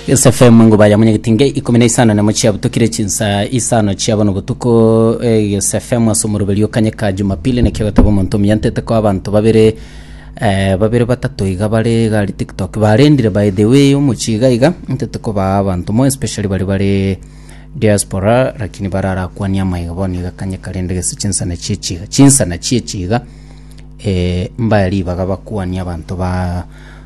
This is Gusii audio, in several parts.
SFM nguba ya munyagiti nge ikumi na isano nemo chiabutokire chinsa isano chiabona obotuko eh, SFM ase omoroberi okanye ka jumapili nakio gataba omonto omuyantete ko abanto babere eh, babere batato iga bare gari tiktok barendire by the way omochi iga iga ntete kobaa abanto mo especially bari bare diaspora lakini bararakwania amaiga bono iga kanye karende gese chinsana chiechiga chinsana chiechiga eh, mbaya ribaga bakwania abanto ba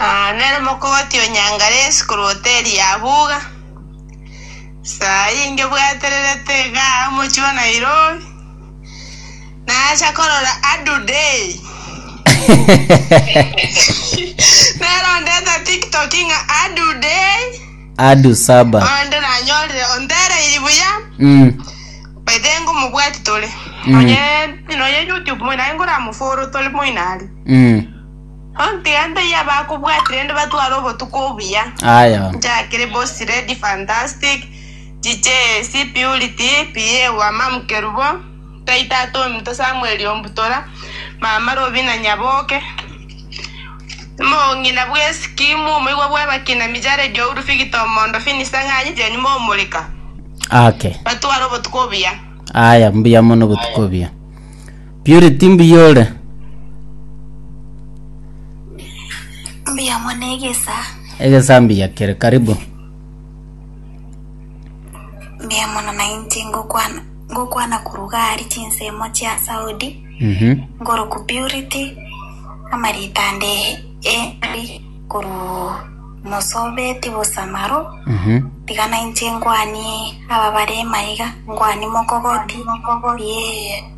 Aa nere mokogoti o Nyangalesi korwa hoteli ya Buga. Saa eye ngebwatererete iga omochie o Nairobi, nacha korora Adu Day. Nerondete TikTok ng'a Adu Day, Adu Saba. onde nanyorire ontereiri buya, Mm. by the way ngomobwati tore. Mm. Nonya nonya YouTube moino aye ngoramofollow tore moino are. Mm. Ontiga ntaiyo abakobwati rende batware obotuko obuya. Aya. Njakire bosi Lady Fantastic, DJ AC Purity, PA wa Mamu Kerubo, Ntai Tata Ominto Samuel Ombutora, Mama Robina Nyaboke, Omong'ina bw'esikimu, omoigwa bw'abakina Mijare Jouru, Victor Omondo, Finis Ang'anyi, Jane Momorika. Ake. Batware obotuko obuya. Aya, mbuya mono obotuko obuya. Purity mbuya ore? Mbuya mono egesa. Egesa mbuya kere karibu. Mbuya mono nainche ngokwana ngokwana koruga ari chinsemo chia Saudi. Mhm. Ngoroku Purity amarita ande eri koru mosobeti bosamaro. Mhm. Tiga nainche ngwanie aba bare maiga ngwani mokogoti ye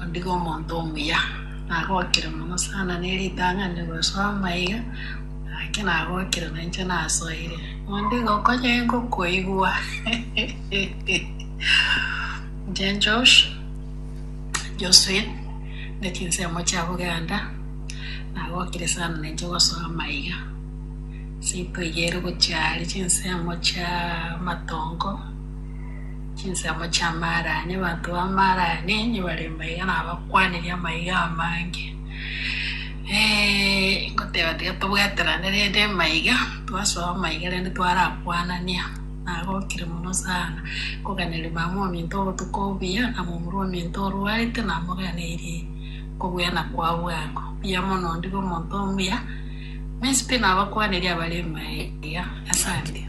Ondigo omonto omuya, nagokire mono sana ne ritang'ani gosoa amaiga ake nagokire na inche nasoire. Ondigo okonye ngokoigwa. Inche Josh, Josephine, ne chinsemo chia Buganda, nagokire sana na inche gosoa amaiga. Ase itoigere gochia aria chinsemo chia amatongo. Chinsemo chi'amaarani. Abanto b'amaarani nibare mbaiga nabakwaneria amaiga amange. Ngoteba tiga tobwaterane rende amaiga, twasoa amaiga rende twarakwanania. Nagokire mono sana koganeria mama ominto obotuko obuya na momura ominto orwarete namoganeirie kobua na kwa bwango. Mbuya mono onde omonto omuya, mensi pi nabakwaneria abare mbaiga. Asante.